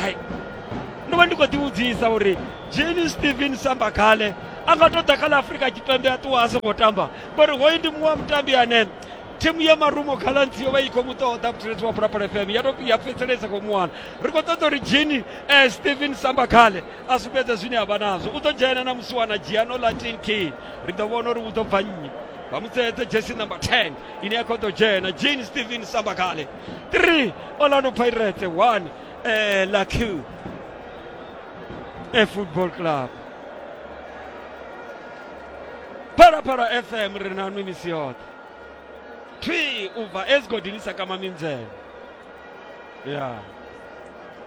hai ndo vha ndi khou ḓivhudzisa uri jeni stephen samba khale a nga tou ḓa kha ḽa afurika tshipembe a ṱuwa a songo tamba ngori hoyu ndi muṅwe wa mutambi ane thimu ya marumo khalanzi yo vha i khou mu ṱoḓa vhutsireledzi wa pulapula fm ya tou ya fhedzelesa khou muwana ri khou ṱoḓa uri jini um eh, stephen samba khale a sumbedze zwine a vha nazwo u ḓo dzhena na musi wana dzhia no latin king ri ḓo vhona uri u ḓo bva nnyi vha mu tseedze jesi number 10 ine ya khou ḓo dzhena jini stephen samba khale 3 orlando pirates 1 eh, la q e football club phalaphala fm ri na nwi misi yoṱhe thwi u bva esigodini sa kama minzhele ya yeah.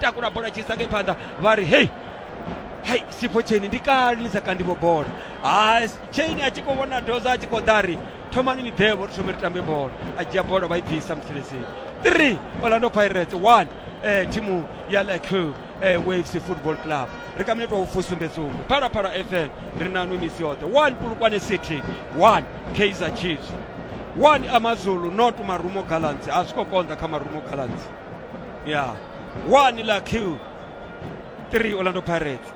takula bola chisa ngei phanḓa vha ri hei hai sipho cheni ndi kale ni sa kandivo bola ha cheni a tshi khou vhona doza a tshi khou ḓa ri thomani ni ḓevo ri thome ri tambe bola a dzhia bola vha i bvisa mutheleseni three orlando pirates one eh, thimu ya laco eh, waves football club ri ka minetwa ufusumbesumbe phalaphala fm ri nanu misi yoṱhe one pulukwane city one kaizer chiefs one amazulu not marumo gallants a zwi khou konḓa kha marumo gallants ya one la q 3 orlando pirates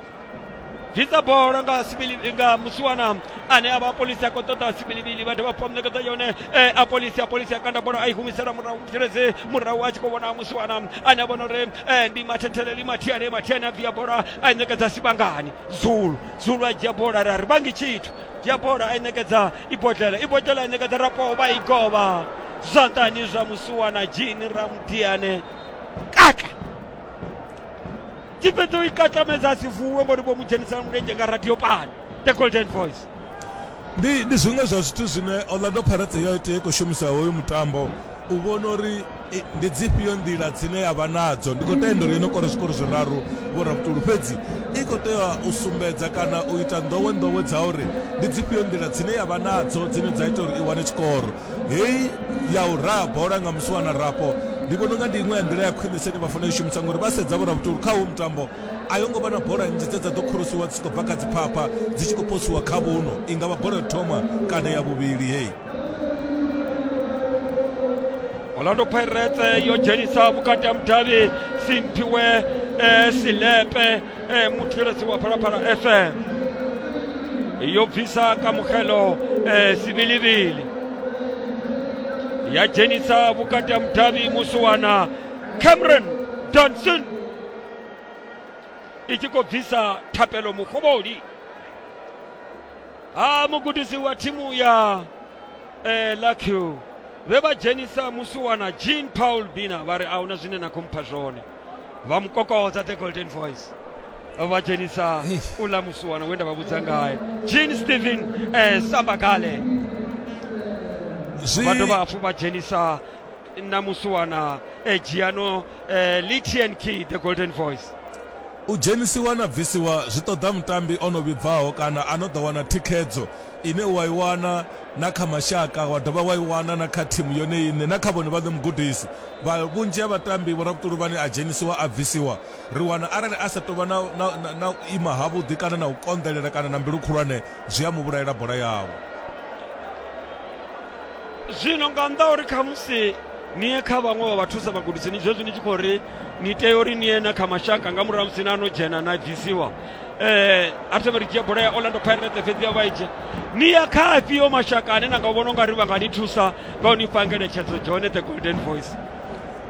bvisa bola nga sibili- nga musiwana ane a vha apolisi a khou ṱoḓa sibilivili vhathu vha pamnekedza yone eh, apolisi apolisi a kanda bola a i humisela murahu tshelezi murahu a tshi khou vhona musiwana ane a vhona uri eh, ndi mathetheleli mathiane mathiane a bvia bola a i ṋekedza sivhangani zulu zulu a dzhia bola ra ri vhangi tshithu dzhia bola a i ṋekedza ibodlela ibodlela ine kaḓa rapo vha i govha zwanḓani zwa musuwana jini ramutiane katla tshifhedza u i katlamedza a si vuwe ngori vho mu dzhenisela mulenzhe nga radio pani the golden voice ndi ndi zwiṅwe zwa zwithu zwine orlando pirates yo tea i khou shumisa hoyu mutambo u vhona uri ndi dzifhio nḓila dzine ya vha nadzo ndi khou tenda uri yo no kora zwikoro zwiraru vhorabutulu fhedzi i khou tea u sumbedza kana u ita nḓowe nḓowe dza uri ndi dzifhio nḓila dzine ya vha nadzo dzine dza ita uri i wane tshikoro hei ya u raha bola nga musi wana rapo ndi vhona unga ndi iṅwe ya nḓila ya khwinese ine vha fanela u shumisa ngori vha sedza vhorabutulu kha hu mutambo a yo ngo vha na bola nnzhi dze dza ḓo khulusiwa dzi tshi khou bva kha dziphapha dzi tshi khou posiwa kha vhuno i nga vha bola thoma kana ya vhuvhili hei orlando pirates yo dzhenisa vhukati ha mudavhi simphiwe eh, silepe eh, muthetshelesi wa phalaphala fm yo bvisa kamugelo eh, sivilivili ya dzhenisa vhukati ha mudavhi musiwana cameron danson i tshi khou bvisa thapelo muhovholi ha mugudisi wa thimu ya eh, Luckhill vhe vha dzhenisa musiwana Jean Paul Bina vha ri ahuna zwine na khou mpha zwone vha mu kokodza the golden voice vha dzhenisa uḽa musiwana we nda vha vhudza ngae Jean Stephen eh, Sambagale zwi vha dovha hafhu vha dzhenisa na musiwana e dzhiano eh, litian key the golden voice u dzhenisiwa na bvisiwa zwi ṱoḓa mutambi o no vhibvaho kana a no ḓo wana thikhedzo ine wa i wana na kha mashaka wa dovha wa i wana na kha thimu yone iṋe na kha vhone vhaṋe mugudisi vha vhunzhi ha vhatambi vhorabutuluvhani a dzhenisiwa a bvisiwa ri wana arali a sa tovha na, na, na, na u ima havhuḓi kana na u konḓelela kana na mbilu khulwane zwi a mu vhulaela bola yawe zwino nga nnḓa uri khamusi ni ye kha vhaṅwe vha vhathusa vhagudisi ni zwezwi ni tshi khou ri ni tea uri ni ye na kha mashaka nga murahu musi na no dzhena na bvisiwa eh arsenal ri dzhia bola ya orlando pirates fhedzi ya vha i dzhia ni ya kha afhio mashaka ane na nga vhona ungari vha nga ni thusa nga u ni fha ngeletshedzo john the golden voice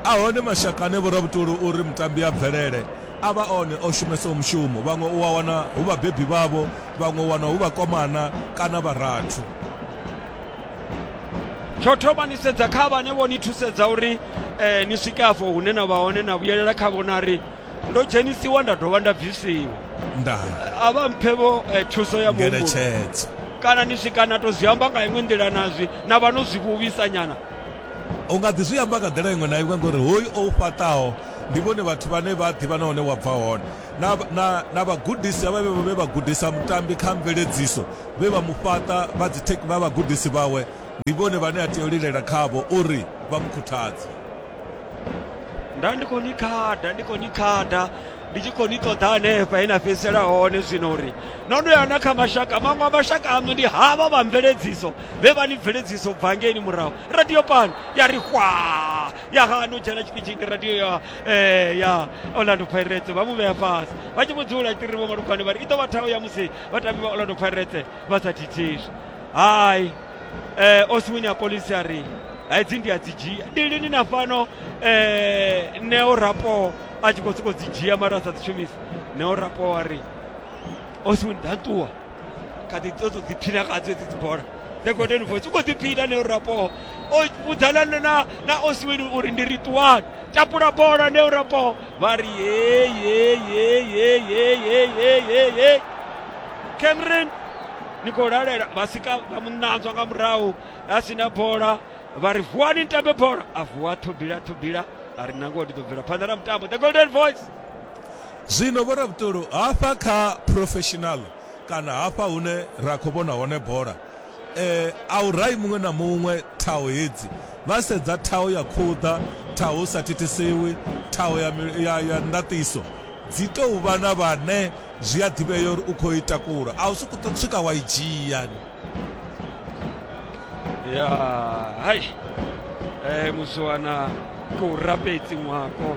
a hone mashaka ane vhorabutolo uri mutambi a bvelele a vha one o shumesaho mushumo vhaṅwe u a wana hu vhabebi vhavho vhaṅwe u wana hu vhakomana kana vharathu tsho thoma ni sedza kha vhane vho ni thusedza uri um ni swike afho hune na vha hone na vhuyelela kha vhona ri ndo dzhenisiwa nda dovha nda bvisiwa a vha mphe vho eh, thuso ya muhumbulo kana ni swika na to zwi amba nga iṅwe nḓila nazwi na vha no zwi vhuvhisa nyana u nga ḓi zwi amba nga nḓila iṅwe na iṅwe ngori hoyu o u fhaṱaho ndi vhone vhathu vhane vha ḓivha na hone wa bva hone na, na, na vhagudisi havha vhe vha gudisa mutambi kha mveledziso vhe vha mu fhaṱa vha dzitheki vha vhagudisi vhawe ndi vhone vhane a tea u lilela khavho uri vha mu khuthadze nda ndi khou ni khada ndi khou ni khada ndi tshi khou ni ṱoḓa hanefha he na fhedzisela hone zwino uri no no yana kha mashaka maṅwe a mashaka aṋu ndi havha vha mveledziso vhe vha ni bveledziso bva ngeini murahu radio pan ya ri hwa ya hano dzhena tshipidzhini radio ya ee ya orlando pirates vha mu vhea fhasi vha tshi vhudzula tiri vho malugwane vha ri i ḓo vha thaho ya musi vhatambi vha orlando pirates vha sa thithiswi hai eh, oswini ya polisi a ri hedzi ndi a dzi dzhia ndi lini na fhano eh, neo rapo a tshi khou sokou dzi dzhia mara a sa dzi shumisi neo rapo a ri oswini ḓa ṱuwa kha ḓi ṱoḓa u ḓiphina ngadzo hedzi dzibola the golden voice u khou ḓiphina neo rapoho o vhudzana na na osiweni uri ndi ri ṱuwani tapula bola neo rapoho vha ri yeyeyeyeyeyeyeyeyeye cameron ni khou lalela vha sika vha mu ṋanzwa nga murahu a si na bola vha ri vuwani ni tambe bola a vuwa thobila thobila a ri nangoho ndi ḓo bvela phanḓa na mutambo the golden voice Zwino vhoravhutolo hafha kha professional kana hafha hune ra khou vhona hone bola, a u rahi muṅwe na muṅwe thaho hedzi. Vha sedza thaho ya khuḓa, thaho hu sa thithisiwi, thaho ya ndaṱiso. Dzi tou vha na vhane zwi a ḓivhea uri u khou i takula, a u sokou tou swika wa i dzhia. Ya, hai, muzwana tou rapedzi ṅwako.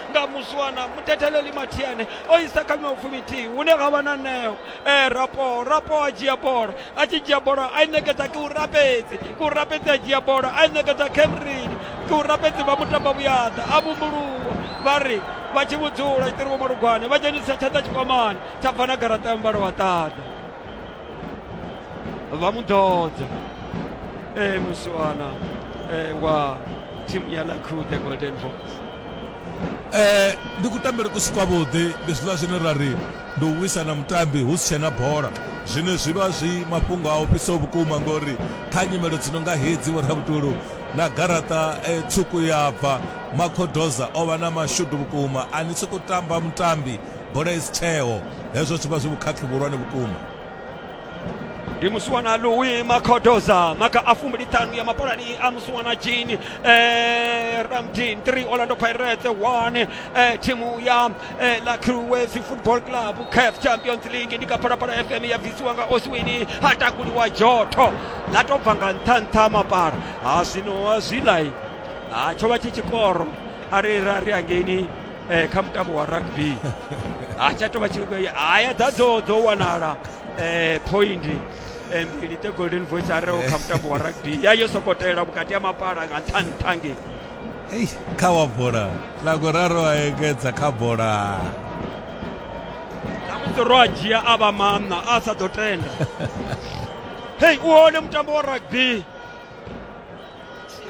nga muswana muthetheleli mathiene o isa kha miṅwe fumithihi hune ga vha na neo e rapo rapo a dzhia bola a tshi dzhia bola a i ṋekedza ke u rapedzi ke u rapedzi a dzhia bola a i ṋekedza kemrini ke u rapedzi vha mutamba vhuyaḓa a vhumbuluwa vha ri vha tshi vhudzula itiri vho malugwane vha dzhenisa tshanḓa tshikwamani tsha bva na garaṱa ya muvhala wa ṱaḓa vha mu ḓodza e muswana e wa thimu ya lakhude golden voice Eh, ndi kutambele kusi kwavhuḓi ndi zwiḽa zwine ra ri ndi u wisa na mutambi hu si tshena bola zwine zwi vha zwi mafhungo a ofhisaho vhukuma ngori kha nyimelo dzi no nga hedzi vhorabutulu na garaṱa eh, tswuku ya bva makhodoza o vha na mashudu vhukuma a ni sokou tamba mutambi bola i si tsheo hezwo zwi vha zwi vhukhakhi vhuhulwane vhukuma ndi musiwana louis makodoza maka a fumi ṱhanu ya mapalani a musiwana jean eh, ramdin 3 orlando pirates 1 eh, timu ya eh, la crues football club caf champions league ndi kaphalaphala fm ya bvisiwa nga oswini ha takuliwa joto ḽa tou bva nga nṱha nṱha mapala ha zwino a zwilai ha tsho vha tshi tshikoro a ri ra ri angeini eh, kha mutambo wa rugby ha tsha tovha tshi haya dza dzo dzo wanala eh, point eh, mbili the golden voice a reho kha mutambo wa rugby ya yo sokotela vhukati ha mapala nga nṱha nṱha nge Ei, kha wa bola ḽa kuraru a engedza kha bola namusi ro a dzhia a vha maṋa a sa ḓo tenda hei u hone mutambo wa rugby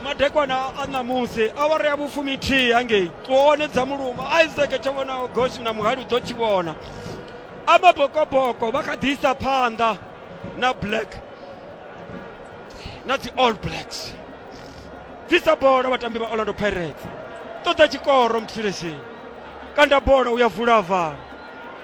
madekwana a ṋamusi awara ya vhufumi thihi hangei tswone dza muluma isaac tsho vhonaho goshi na muhali u ḓo tshi vhona amabokoboko vha kha ḓi isa phanḓa na black na dzi all blacks bvisa bola vhatambi vha orlando pirates ṱoḓa tshikoro mthilesheni kanda bola u ya vula vhala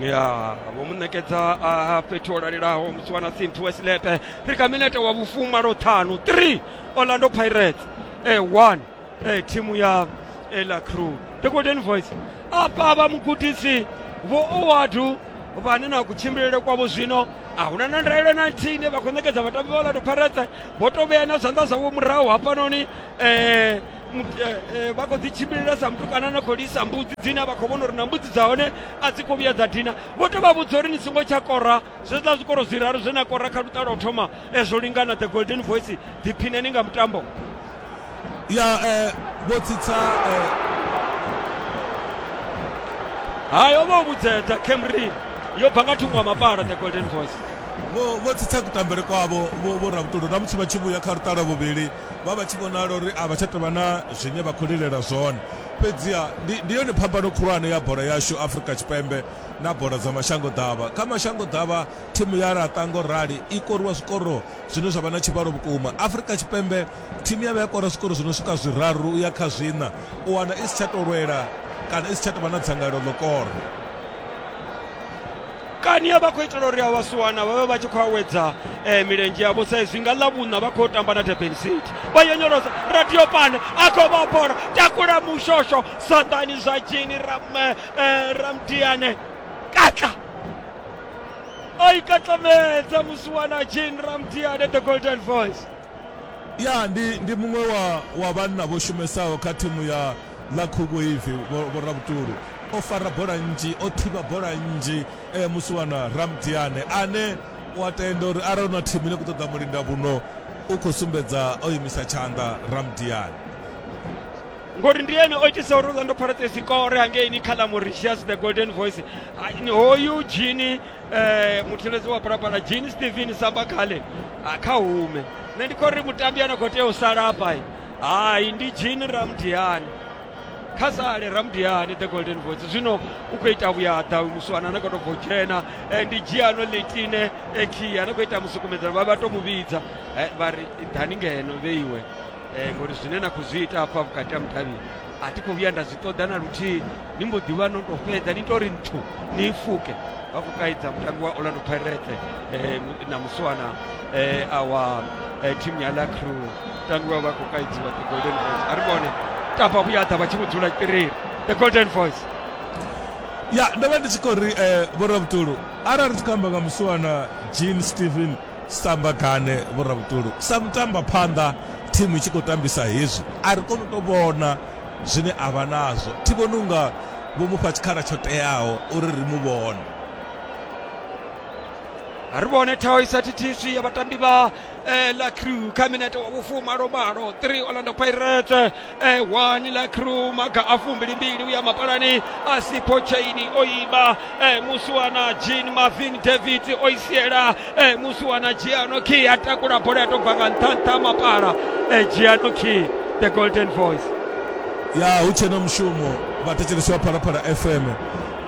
ya vho mu ṋekedza a fhethu ho lalelaho musi wana sinthu wesilepe ri kha minete wa vhufuma lwo ṱhanu 3 orlando pirates e 1 e thimu ya ela crew the golden voice apa vha mugudisi vho owadu vhane na kutshimbilele kwavho zwino a huna na ndaelo na nthihi ine vha khou ṋekedza vhatambi vha orlando pirates vho to vhea na zwanḓa zwavho murahu hafhanoni um vha khou dzi tshimbilila sa mutukana na khou lisa mbudzi dzine vha khou vhona uri na mbudzi dza hone a dzi khou vhuya dza dina vho to vha vhudza uri ni songo tsha kora zwiḽa zwikoro zwiraru zwe na kora kha luṱa lwa u thoma zwo lingana the golden voice ḓiphineni nga mutambo ya vho tsitsa hayo vho vhudzedza camry yo bva nga thungo wa mapala the golden voice vho tsitsa kutambele kwavho vho rabutolo na musi vha tshi vhuya kha luṱa lwa vhuvhili vha vha tshi vhonala uri a vha tsha tovha na zwine vha khou lilela zwone fhedziha ndi yone phambano khulwane ya bola yashu afurika tshipembe na bola dza mashango ḓavha kha mashango ḓavha thimu ya laṱa ngo rali i koriwa zwikoro zwine zwa vha na tshivhalo vhukuma afurika tshipembe thimu ya vha ya kora zwikoro zwi no swika zwiraru u ya kha zwiṋa u wana i si tsha to lwela kana i si tsha tovha na dzangalelo ḽo kora kani ya vha khou itela uri a vhasiwana vha vhe vha tshi khou awedza um eh, milenzhe yavho sa izwi nga ḽavhuṋa vha khou tamba na durban city vha yonyolosa radio pane a khou vha bola takula mushosho saḓani zwa tshini eh, ramdiane eh, katla o ikatlamedza musiwana jane ramdiane the golden voice ya ndi, ndi muṅwe wa, wa vhanna vho shumesaho kha thimu ya ḽa khuvhuivi vhoravhutulu o fara bola nnzhi o thivha bola nnzhi e, musiwana ramdiane ane wa tenda uri arali na thimu ine ku ṱoḓa mulinda vhuno u khou sumbedza o imisa tshanḓa ramdiane ngori ndi ene o itisa uri orlando pirates ikore hangeini kha ḽa mauritius the golden voice hoyu jini eh, mutheledzi wa phalaphala jean stephen sabakale ah, kha hume nṋe ndi khou ri mutambi a na khou tea u sala afha hai ndi jean ramdiani kha sale ramdiani the golden voice zwino u khou ita vhuyaḓa uyu muswana na khou tou bvo dzhena eh, ndi giano letine ekhia na khou ita musukumedzano vha vha tou mu vhidza Eh, vha ri ḓani ngeno vheiwe Eh, ngori zwine na khou zwi ita afha vhukati ha mudavhini a thi khou vhuya nda zwi ṱoḓa na luthihi ni mbo ḓi vha no tou fhedza ni tori nthu ni fuke vha khou kaidza mutambi wa orlando pirate eh, na muswana eh, awa eh, thimu ya la crew mutambi wa vha khou kaidziwa the golden voice a ri vhone tapa vhuyaḓa vha tshi mu dzula tiriri the golden voice ya ndo vha ndi tshi khou ri um vhoravhutulu arali ri tshi khou amba nga muswana jean stephen Sambagane Vhoravhutulu, sa mutambaphanḓa thimu i tshi khou tambisa hezwi a ri koni u tou vhona zwine a vha nazwo. Thi vhoni u nga vho mu fha tshikhala tsho teaho uri ri mu vhone. ri vhone thaho i sa thithiswi ya vhatambi vha eh, la crew kha minete wa vhufumalo malo 3 orlando pirates ewani la crew maga a fumbilimbili uya mapalani asipo chaini oiba e, musi wana jean marvin david oisiela e, musi wana giano key atakula bola yatobva nga nṱhanṱha mapala e, giano key the golden voice ya hu tshena mushumo vhathetshelesi wa phalaphala fm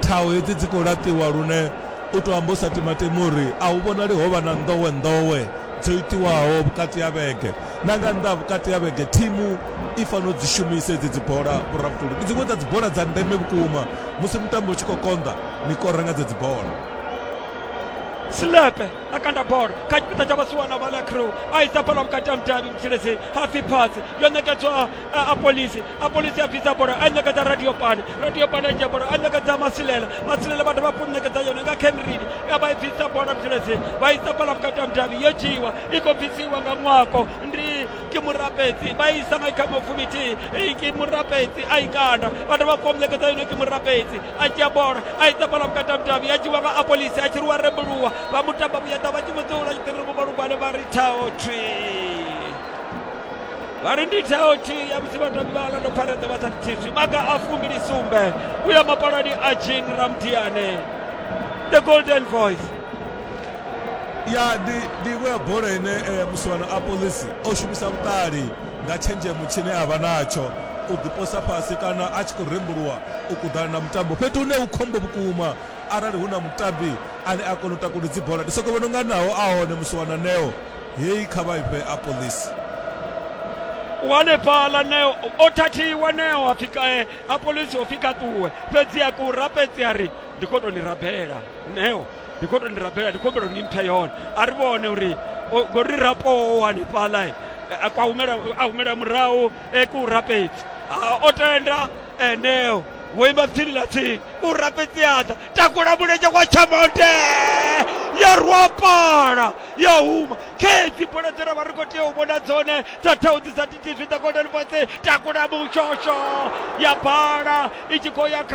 thaho hedzi dzi khou laṱiwa lune u tou amba u sa timatimi uri a hu vhonali ho vha na nḓowenḓowe dzo itiwaho vhukati ha vhege Na nga nnḓa ha vhukati ha vhege, thimu i fanela u dzi shumisa hedzi dzibola, vhurabvutuli. Ndi dziṅwe dza dzibola dza ndeme vhukuma. Musi mutambo u tshi khou konḓa, ni kora nga dzedzi bola. Selepe a kanda bola kha tshipiḓa tsha vhasiwana vha la crew a isa bola vhukati ha mudavhi mutshiledzeni hapfi phatsi yo ṋekedzwa a polisi a polisi a bvisa bola a ṋekedza radio pane radio pane a dzhia bola a ṋekedza masilela masilela vhathu vha ṋekedza yone nga khenrini ya vha i bvisa bola muthelezeni vha isa bola vhukati ha mudavhi yo dzhiiwa i khou bvisiwa nga mwako ndi ke murapetsi vha isa nga ikha mafumiti ke murapetsi a ikanda vhathu vha khou ṋekedza yone ke murapetsi a dzhia bola a isa bola vhukati ha mudavhi ya dzhiwa nga a polisi a tshiriwa rembuluwa vha mutamba vhuyaḓa vha tshi mudzula tshiṱiriri vho vhalugwane vha ri thaho thwii vha ri ndi tsheo tshi ya musi vhatambi vha orlando pirates vha sa thithiswi maga a fumbili sumbe u ya mapalani a jean ramdiane the golden voice ya ndi ndi iṅwe ya bola ine eh, musivhano a polisi o shumisa vhuṱali nga tshenzhemo tshine a vha natsho u ḓiposa fhasi kana a tshi khou rembuluwa u kuḓana na mutambo fhethu hune hu khombo vhukuma arali hu na mutambi ane a kona u takuda dzi bola ndi soko vhona unga naho a hone musiwana neo Hei kha vha ifhe a polisi. Wanefhala neo o thathiwa neo a fika eh, a polisi o fika tuwe fhedzi a ku rapedzi a ri ndi khou tou ni rabela neo ndi khou tou ni rabela ndi khumbelo ni mphe yone a ri vhone uri ngori rapo wanefhala eh, a kwa humela a humela murahu e ku rapedzi o tenda eneo wo ima tsini ḽa tsini u rapedzi aḓa takula mulenzhe kwa tshamonde ya rwapala ya huma khethi bola dzine vha ri khou tea u vhona dzone dza thaudzi dza titv the golden voice takula mushosho ya bala i tshi khou ya kha